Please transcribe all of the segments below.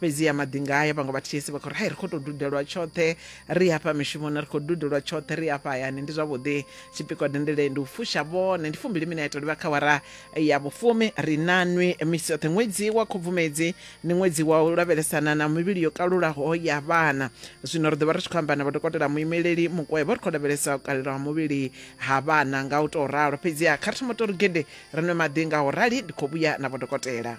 fhedziha maḓinga haya vhaṅwe vha ths vha khou ri hai ri khou tou dudelwa tshoṱhe ri hafha mishumoni ri khou dudelwa tshoṱhe ri hafha hayani ndi zwavhuḓi tshipikwa dendele ndi u fusha vhone ndi fumbili mina ya tou livha kha wara ya vhufumi ri na nwi misi yoṱhe ṅwedzi wa khubvumedzi ndi ṅwedzi wa u lavhelesana na mivhili yo kalulaho ya vhana zwino ri ḓo vha ri tshi khou amba na vhodokotela muimeleli mukwevho ri khou lavhelesa u kalelwa ha muvhili ha vhana nga u tou ralo fhedziha kha ri thoma tou ri gede ri nwe maḓi nga u rali ndi khou vhuya na vhodokotela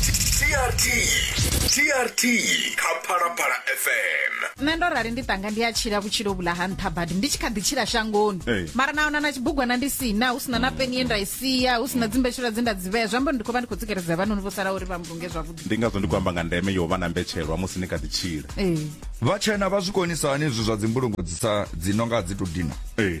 trt trt kha phalaphala fm nṋe ndo rali ndi tanga ndi a tshila vhutshilo vhula ha nṱha badi ndi tshi kha ḓi tshila shangoni Ee. mara na ona na tshibugwana ndi sina hu sina na peni ye nda i sia hu sina dzimbetshelwa dze nda dzi vhea zwi amba uri ndi khou vha ndi khou tsikeledza vhanoni vho sala uri vha mbunge zwavhuḓi ndi ngazwo ndi khou amba nga ndeme yo vha na mbetshelwa musi ni kha ḓi tshila ee vhatshena vha zwi konisa hani izwi zwa dzimbulungo dzi sa dzi nonga dzi to dina ee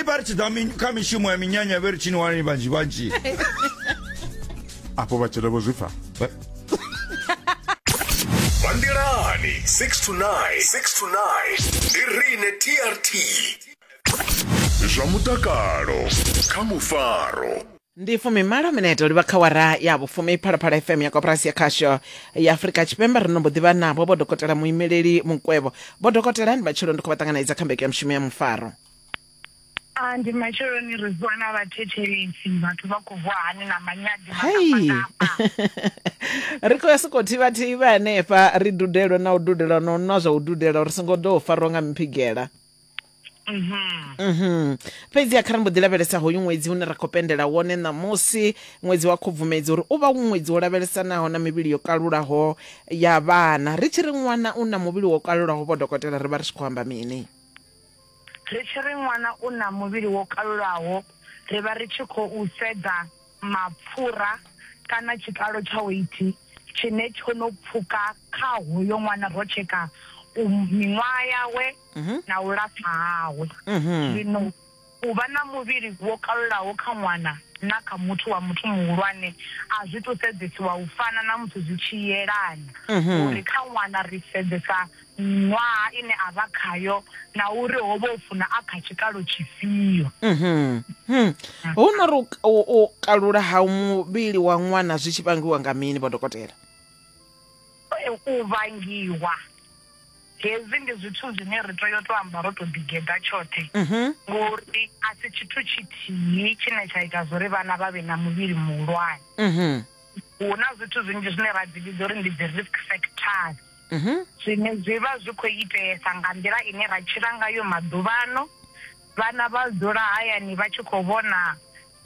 ipari tidza mi- kha mishumo ya minyanya vhe ri tshini wanani vhanzhi vhanzhi afho vhatshela vho zwi pfa Ba- Bandelani 6 to 9. 6 to 9. Ndi riṋe TRT. Zwa mutakalo kha mufaro. ndi fumimalo minete livha kha wara ya vhufumi phalaphala fm ya koporasi ya khasho ya afurika tshipembe ri no mbo ḓivha navho vho dokotela muimeleli mukwevho vho dokotela ndi matshelo ndi khou vha ṱanganedza kha mbeke ya mushumo ya mufaro Ah, ndi matsheloni ri vuwa na vhathetshelesi vhathu vha khou vuwa hani na manyadi hei ri khou ya sokou thivhathiva hanefha ri dudelwe na u dudelwa na u nwa zwa u dudela uri songo ḓo farwa nga miphigela Mhm. fhedzi kha ri mbo ḓi lavhelesa hoyu ṅwedzi une ra khou pendela wone ṋamusi ṅwedzi wa khubvumedzi uri u vha u ṅwedzi wo lavhelesanaho na mivhili yo kalulaho ya vhana ri tshi ri ṅwana u na muvhili wo kalulaho vho dokotela ri vha ri tshi khou amba mini ri tshi ri ṅwana u na muvhili wo kalulaho ri vha ri tshi khou sedza mapfura kana tshikalo tsha weithi tshine tsho no pfuka kha hoyo ṅwana ro tsheka miṅwaha yawe na u lapfa hawe. Zwino u vha na muvhili wo kalulaho kha ṅwana na kha muthu wa muthu muhulwane a zwi tou sedzesiwa u fana na musi zwi tshi yelana, uri kha ṅwana ri sedzesa miṅwaha ine a vha khayo na uri ho vha u funa a kha tshikalo tshifhio. Hu no ri u kalula ha muvhili wa ṅwana zwi tshi vhangiwa nga mini, Vho Dokotela? U vhangiwa hezwi ndi zwithu zwine ri tea u tou amba ro tou ḓigeḓa tshoṱhe ngori a si tshithu tshithihi tshine tsha ita zwo ri vhana vha vhe na muvhili muhulwane. Hu na zwithu zwinzhi zwine ra dzi vhidza uri ndi dzi risk factors. mhm. zwine zwi vha zwi khou iteesa nga nḓila ine ra tshila ngayo maḓuvhano vhana vha dzula hayani vha tshi khou vhona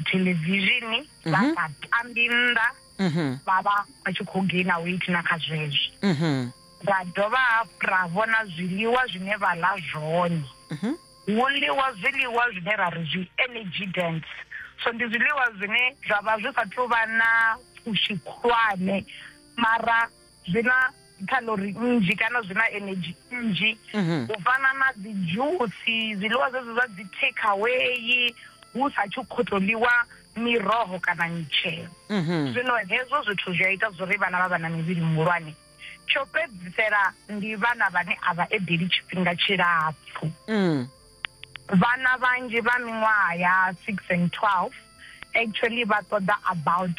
thelevishini vha mhm. sa tambi nnḓa mhm. vha vha vha tshi khou gaina weight na kha zwezwo ra dovha hafhu ra vhona zwiḽiwa zwine vha ḽa zwone hu ḽiwa zwiḽiwa zwine ra ri zwi energy dance so ndi zwiḽiwa zwine zwa vha zwi sa thu vha na pfushi khulwane mara zwi na calorie nnzhi kana zwi na energy nnzhi mhm. u fana na dzi dzhusi zwiḽiwa zwezwo zwa dzi take away hu sa tshi khou tou ḽiwa miroho kana mitshelo mhm. zwino hezwo zwithu zwi a ita zwori vhana vha vha na mivhili muhulwane tsho fhedzisela ndi vhana vhane a vha edeli tshifhinga tshilapfhu mm. vhana vhanzhi vha miṅwaha ya six and twelve actually vha ṱoḓa about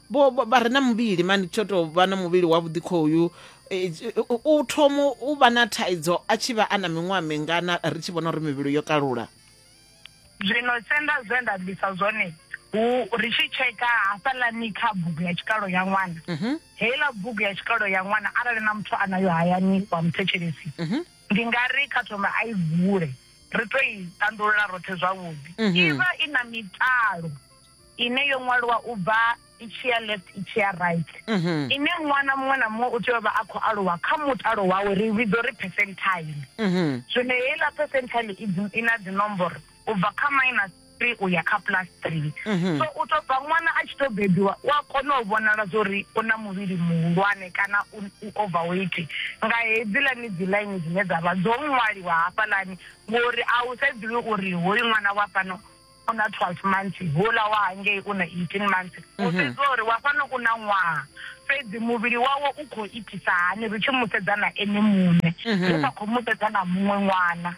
vho vho- vha re na muvhili mani tsho tou vha na muvhili wavhuḓi khoyu eh, tshi- u- u u thomo u vha na thaidzo a tshi vha a na miṅwaha mingana ri tshi vhona uri mivhili yo kalula zwino senda zwe nda bvisa zwone hu ri tshi tsheka hafhaḽani kha bugu ya tshikalo ya ṅwana Mhm, heiḽa bugu ya tshikalo ya ṅwana arali na muthu a nayo hayani wa muthetshelesi mhm. ndi nga ri kha thoma a i vule ri to i tandulula roṱhe zwavhuḓi Mhm. i vha i na mitalo ine yo ṅwalwa u bva i tshi ya left i tshi ya right mhm. ine ṅwana muṅwe na muṅwe u tea u vha a khou aluwa kha mutalo wawe ri vhidzo ri percentile mhm. zwino heiḽa percentile i na dzinomboro u bva kha minus three u ya kha plus three mhm. so u tou bva ṅwana a tshi tou bebiwa u a kona u vhonala zwa uri u na muvhili muhulwane kana u overweight nga hedzilani dzi ḽaini dzine dza vha dzo ṅwaliwa hafhaḽani ngori a u sedzuli uri hoyu ṅwana wa fhano u na 12 months houḽa wa hangei u na 18 months u sedziwa uri wa fhano u na ṅwaha fhedzi muvhili wawe u khou itisa hani ri tshi mu sedza na ene muṋe ri sa khou mu sedza na muṅwe ṅwana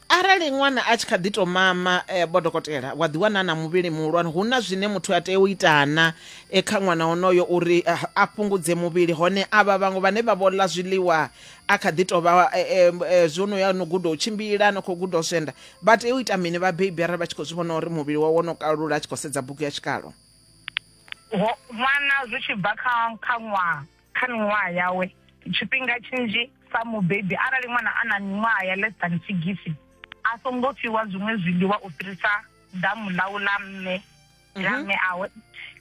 arali ṅwana a tshi kha ḓi to mama eh, vho dokotela wa ḓi wana na muvhili muhulwane hu na zwine muthu a tea u itana eh, kha ṅwana onoyo uri ah, a fhungudze muvhili hone avha vhaṅwe vhane vha vho ḽa zwiḽiwa a kha ḓi tou vha eh, eh, eh, zwo no ya no guda u tshimbila no khou guda u zwenda vha tea u ita mini vhabebi arali vha tshi khou zwi vhona uri muvhili wawe wo no kalula a tshi khou sedza bugu ya tshikalo Ho- ṅwana zwi tshi bva kha kha ṅwaha kha miṅwaha yawe tshifhinga tshinzhi sa mubebi arali ṅwana a na miṅwaha ya less than sigisi a songo fhiwa zwiṅwe zwiḽiwa u fhirisa damu ḽau ḽa mme la mme awe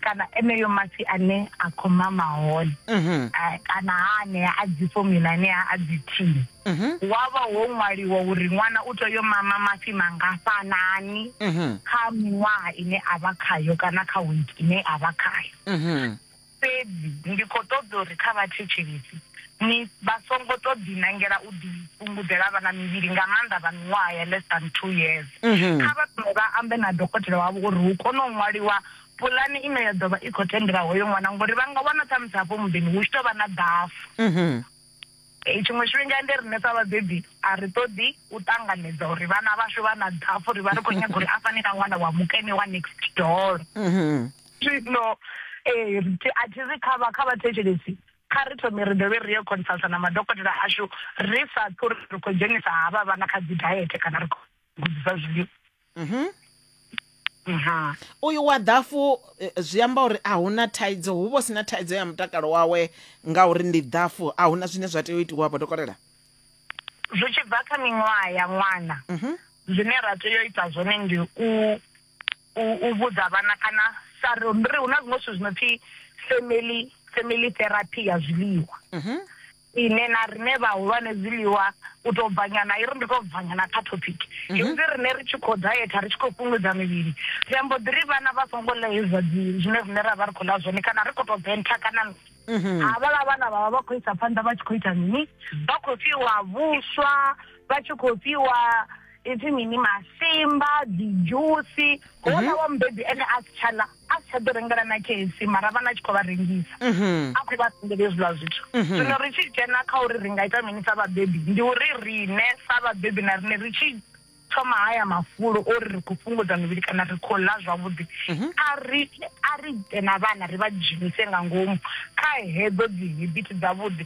kana eneyo masi ane a khou mama hone mhm. eh, kana ha anea a dzi fomula anea a dzi thini mhm. wa vha ho ṅwaliwa uri ṅwana u tea yo mama mafhi mangafhanani mhm. kha miṅwaha ine a vha khayo kana kha wiki ine a vha khayo Fhedzi ndi khou ṱoḓa uri kha vhathetshelesi ni vha songo tou ḓinangela u ḓifhungudzela vha na mivhili, nga maanḓa vha miṅwaha ya less than two years. Kha vha thome vha ambe na dokotela wavho uri hu kone u ṅwaliwa pulane ine ya ḓo vha i khou tendela hoyo ṅwana, ngauri vha nga wana ṱhamusi hafho muḓini hu tshi tou vha na ḓafu. Tshiṅwe tshifhinga ende riṋe sa vhabebi a ri ṱoḓi u ṱanganedza uri vhana vhashu vha na ḓhafhu, ri vha ri khou nyaga uri a fane na ṅwana wa mukene wa next door. Zwino ri tshi a thi ri kha vha kha vhathetshelesi kha ri thome ri dovhe ri yo consulter na madokotela ashu ri sa ṱwi ri khou dzhenisa havha vhana kha dzi diet kana ri khou gudisa zwiḽiwa. Mhm. Aha. uyu wa ḓafu eh, zwi amba uri a huna thaidzo hu vho sina thaidzo ya mutakalo wawe ngauri ndi ḓafu a huna zwine zwa tea u itiwa vho dokotela Zwi tshi bva kha miṅwaha ya ṅwana. Mhm. Zwine ra tea u ita zwone ndi u u u vhudza vhana kana sa ri ri hu na zwiṅwe zwithu zwi no pfi family family therapy ya zwiḽiwa. Mhm. ine na rine vhahulwane zwiḽiwa u tou bvanyana i ri ndi tou bvanyana kha topic mhm. hezwi rine ri tshi khou dayetha ri tshi khou fhungudza mivhili ri ambo ḓi ri vhana vha songo ḽa hezwa zwine rine ra vha ri khou ḽa zwone kana ri khou tou bentha kana mhm. havhala vhana vhavha vha khou isa phanḓa vha tshi khou ita mini vha khou fhiwa vhuswa vha tshi khou fhiwa ipfi mini masimba dzidzhusi ho mhm. wa mubebi ene a si tsha ḽa a si tsha ḓo rengela na kc mara vhana tshi khou vha rengisa mhm. a khou vha sendela hezwiḽa zwithu mhm. zwino ri tshi dzhena kha uri ri nga ita mini sa vhabebi ndi uri rine sa vhabebi na rine ri tshi thoma haya mafulo o ri ri khou fhungudza mivhili kana ri khou ḽa zwavhuḓi mhm. a ri a ri ite na vhana ri vha dzhenise nga ngomu kha hedzo dzi habit dzavhuḓi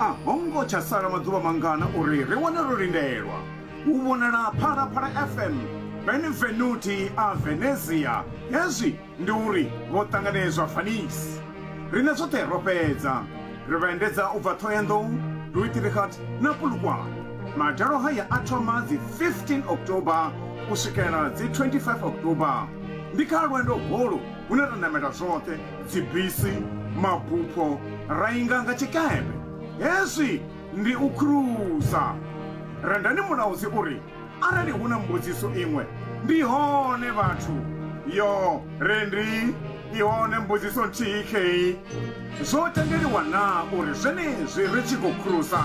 a ho ngo tsha sala maḓuvha mangana uri ri wane ro lindelwa u vhonala phalaphala fm benvenuti a venezia hezwi ndi uri vho ṱanganedzwa fanis riṋe zwoṱhe ro fhedza ri vha endedza u bva thohoyandou luitirikat na pulukwane madalo haya a thoma dzi 15 october u swikela dzi 25 october ndi kha lwendo holu hune ra namela zwoṱhe dzibisi, mabupho ra inga nga tshikepe. Hezwi ndi u khurusa. Rendani mulaudzi u ri, Arali hu na mbudziso iṅwe, ndi hone vhathu. Yo, Rendi, i hone mbudziso nthihi khei. Zwo tendeliwa naa uri zwenezwi ri tshi khou khurusa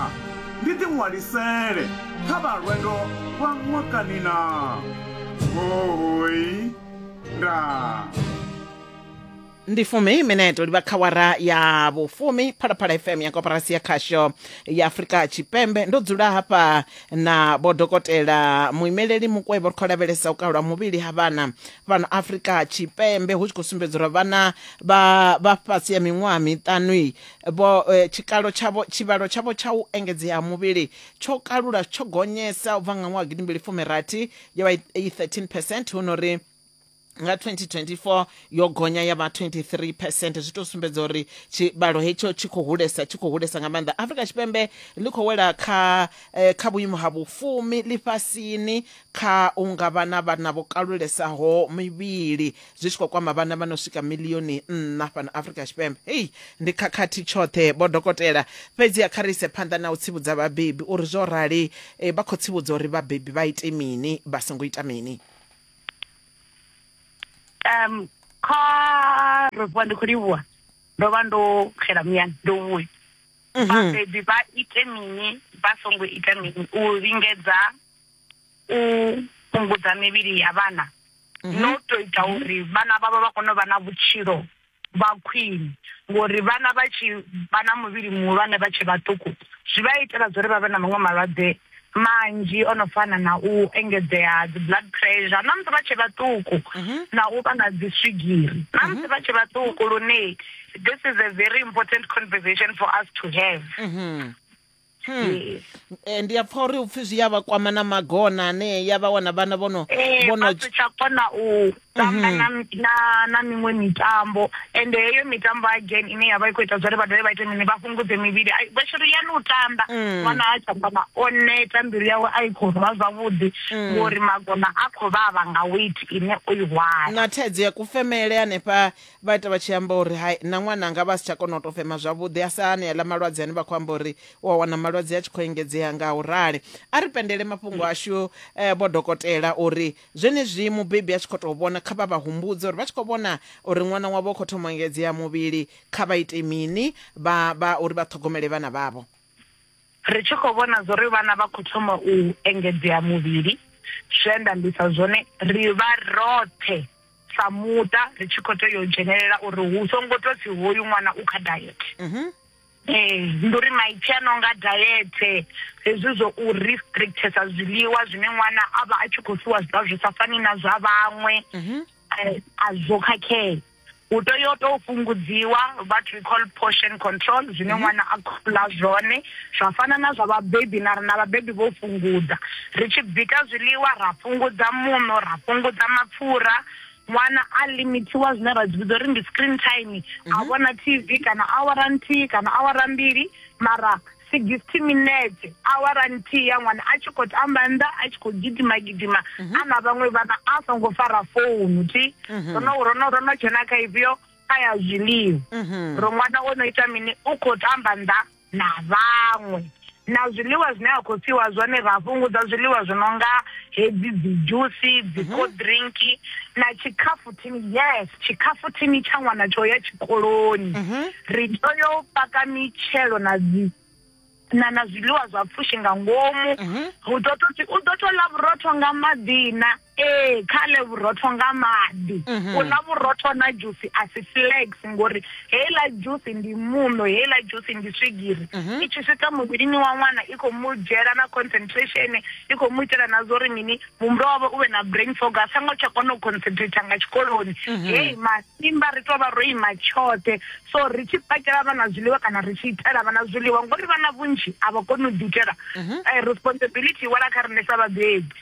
ndi ḓiṅwalisele kha vha lwendo lwa ṅwakani naa? Hoooi. Ndaa. ndi fumi mineto livha kha wara ya vhufumi phalaphala fm ya koporasi ya khasho ya afurika tshipembe ndo dzula hafha na vho dokotela muimeleli mukwevho ri khou lavhelesa u kalwa muvhili ha vhana fhano afurika tshipembe hu tshi khou sumbedza uri vhana vha vha fhasi ya miṅwaha miṱanui vho eh, tshikalo tshavho tshivhalo tshavho tsha u engedzea ha muvhili tsho kalula tsho gonyesa u bva nga ṅwaha gidimbili fumi rathi yo vha i 13 percent hu no ri nga 2024 yo gonya ya vha 23 percent zwi tou sumbedza uri tshivhalo hetsho tshi khou hulesa tshi khou hulesa nga maanḓa afrika tshipembe ḽi khou wela kha eh, kha vhuimo ha vhufumi ḽifhasini kha u nga vha na vhana vho kalulesaho mivhili zwi tshi khou kwama vhana vha no swika milioni nṋa fhano afrika tshipembe hei ndi khakhathi tshoṱhe vho dokotela fhedzi a kha ri ise phanḓa na u tsivhudza vhabebi uri zwo rali eh, vha khou tsivhudza uri vhabebi vha ite mini vha songo ita mini um kha ro vuwa ndi khou livhuwa ndo vha ndo xela muyani ndo vhuya vhabebi vha ite mini vha songo ita mini u lingedza u fhungudza mivhili ya vhana no to ita uri vhana vhavho vha kone u vha na vhutshilo vha khwini ngori vhana vha tshi vha na muvhili muhulwane vha tshe vhaṱuku zwi vha itela zwa uri vha vhe na maṅwe malwadze manzhi o no fana na u engedzea ha dzi blood pressure na musi vha tshe vhaṱuku mhm. na u vha na dzi swigiri na mhm. musi vha tshe vhaṱuku lune this is a very important conversation for us to have mhm. Hmm. Yes. Eh, ndi a pfa uri upfi zwi ya vha kwama na magona ane ya vha wana vhana vhono Eh, vhono vha si tsha kona u tamba Mhm. na, na, na miṅwe mitambo ende heyo mitambo again ine ya vha i khou ita zwori vha dovhe vha ite mini vha fhungudze mivhili Ai, vha shiri yani u tamba Mm. ṅwana a tsha kona o neta mbilu yawe a i khou rwa zwavhuḓi Mm. ngori magona a khou vhavha nga weight ine o i hwala na thaidzo ya kufemele hanefha Vha ita vha tshi amba uri, Hai, na ṅwananga a vha a si tsha kona u tou fema zwavhuḓi, a sa hani aḽa malwadze ane vha khou amba uri u a wana malwadze a tshi khou engedzea nga u rali. A ri pendele mafhungo ashu vho dokotela uri zwenezwi mubebi a tshi khou tou vhona, kha vha vha humbudze uri vha tshi khou vhona uri ṅwana wavho u khou thoma u engedzea muvhili, kha vha ite mini vha, vha, uri vha ṱhogomele vhana vhavho. Ri tshi khou vhona zwo ri vhana vha khou thoma u engedzea muvhili, zwe nda ambisa zwone, ri vha roṱhe sa muṱa ri tshi khou tea u dzhenelela uri hu songo tou pfi hoyu ṅwana u kha dayethe. Mhm. Ee, ndi uri maipfi a no nga dayethe hezwi zwo u restrictesa zwiḽiwa zwine ṅwana a vha a tshi khou fhiwa zwiḽiwa zwi sa fani na zwa vhaṅwe mhm. eh, a zwo khakhea hu tea u tou fhungudziwa what we call portion control zwine mhm. ṅwana a khula zwone zwa fana na zwa vhabebi na rina vhabebi vho fhungudza ri tshi bika zwiḽiwa ra fhungudza muṋo ra fhungudza mapfura ṅwana a limithiwa zwine ra dzi vhidza uri ndi screen time a mhm. vhona tv kana awara nthihi kana awara mbili mara 60 minetse awara nthihi ya ṅwana a tshi khou tamba nnḓa a tshi khou gidima gidima mhm. a na vhaṅwe vhana a songo fara founu thi mhm. rono ro no ro no dzhena kha ifhio kha ya zwiḽiwa mhm. ro ṅwana o no ita mini u khou tamba nnḓa na vhaṅwe na zwiḽiwa zwine a khou fiwa zwone ra fhungudza zwiḽiwa zwi no nga hedzi dzi dzhusi dzi cold drink na tshikhafu Thimi, Yes, tshikhafu thimi tsha ṅwana tsho ya tshikoloni. Ri tea u paka mitshelo na dzi na na zwiḽiwa zwa pfushi nga ngomu hu ḓo to u ḓo to ḽa vhurotho nga maḓi na ee kha ḽe vhurotho nga maḓi u ḽa vhurotho na dzhusi a si flags ngori heiḽa dzhusi ndi muṋo heiḽa dzhusi ndi swigiri i tshi swika muvhilini wa ṅwana i khou mu dzhiela na concentration i khou mu itela na zwo ri mini muhumbulo wawe u vhe na brain fog a songo tsha kona u concentrator nga tshikoloni mhm. hei masimba ri tou vha ro ima tshoṱhe so ri tshi pakela vhana zwiḽiwa kana ri tshi itela vhana zwiḽiwa ngori vhana vhunzhi a vha koni u ḓiitela mhm. eh, responsibility wala kha riṋe sa vhabebi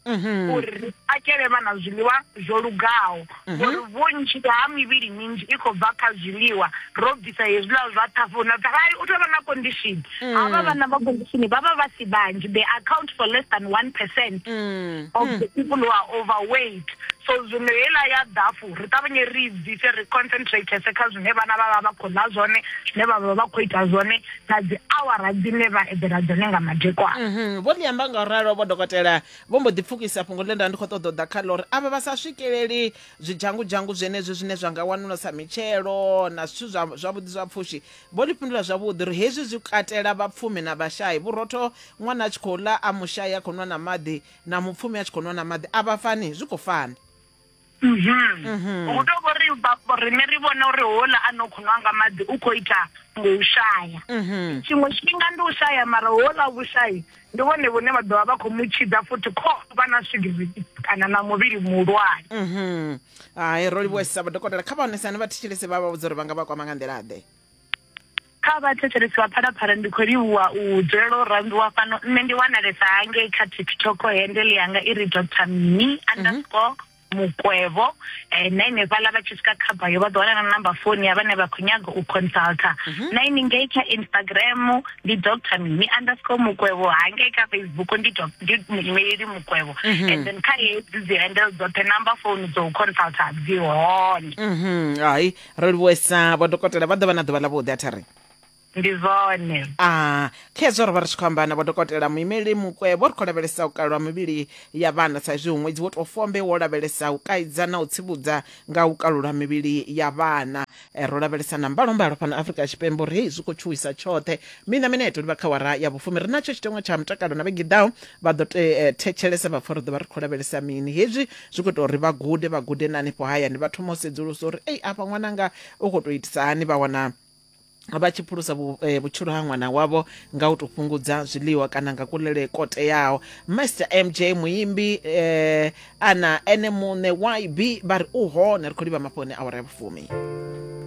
mhm. uri ri pakele vhana zwiḽiwa zwo lugaho ngori vhunzhi ha mivhili minzhi i khou bva kha zwiḽiwa ro bvisa hezwiḽa zwa ṱhafu na ṱhafai u tovha na condition mm. havha vhana vha condition vha vha vha si vhanzhi they account for less than one percent mm. of the mm. people who are overweight so zwino heiḽa ya ḓafu ri ṱavhanye ri bvise ri concentratese kha zwine vhana vha vha vha khou ḽa zwone zwine vha vha vha khou ita zwone na dzi awara dzine vha eḓela dzone nga madekwana mm-hmm. vho ḽi amba nga u ralo vho dokotela vho mbo ḓi pfukisa fhungo ḽe nda ndi khou ṱoḓa u ḓa kha ḽo uri avha vha sa swikeleli zwidzhangudzhangu zwenezwi zwine zwa nga wanula sa mitshelo na zwithu zwavhuḓi zwa pfushi vho ḽi fhindula zwavhuḓi uri hezwi zwi katela vhapfumi na vhashai vhurotho ṅwana a tshi khou ḽa a mushai a khou nwa na maḓi na mupfumi a tshi khou nwa na maḓi a vha fani zwi khou fana Mhm. Mhm. hu tou vho ri vha- vho riṋe ri vhona uri houḽa a no khou nwa nga maḓi u khou ita ngo u shaya Mhm. tshiṅwe tshifhinga ndi u shaya mara houḽa vhushayi ndi vhone vhune vha ḓovha vha khou mu tshidza futhi kho vha na swigiri kana na muvhili muhulwane Mhm. hai ro livhuwesa vhadokotela kha vhaonesani vha thetshelese vha vha vhudza uri vha nga vha kwama nga nḓila-ḓe kha vhathetshelesi vha phalaphala ndi khou livhuwa u dzulela u rambiwa fhano nṋe ndi wanalesa hangei kha tiktok hendele yanga i ri dr mini mhm. underscore mukwevho um na inefhaḽa vha tshi swika khaba yo vha ḓo wana na namba foni ya vhane vha khou nyaga u consulta mhm. na ini ngei kha instagram ndi dr mini underscore mukwevho hangei kha facebook ndi muimeeli mukwevho mhm. and then kha hedzi dzi handle dzoṱhe namba foni dzo u consulta dzi hone hai ri livhuwesa vho dokotela vha ḓo vha na ḓuvha ḽa vhuḓi a thari ndi zwone a khezwo ro vha ri tshi khou amba na vhodokotela muimeli mukwe vho ri khou lavhelesa u kalwa mivhili ya vhana sa izwi ṅwedzi wo tou fombe wo lavhelesa u kaidza na u tsivhudza nga u kalula mivhili ya vhana eh, ro lavhelesa na mbalombalo fhano afrika tshipembe uri hei zwi khou tshuwisa tshoṱhe mina mineto livha kha wara ya vhufumi ri natsho tshiteṅwa tsha mutakalo na vhegiḓaho vha ḓo te- eh, thetshelesa vha pfa ri ḓo vha ri khou lavhelesa mini hezwi zwi khou ita uri vha gude vha gude na hanefho hayani vha thoma u sedzulusa uri ei afha ṅwananga u khou tou itisa hani vha wana vha tshi phulusa eh, vhutshilo ha ṅwana wavho nga u tou fhungudza zwiḽiwa kana nga kulele ko teaho master mj muimbi eh, ana ene muṋe yb vha ri u hone ri khou livha mafhoni awara ya vhufumi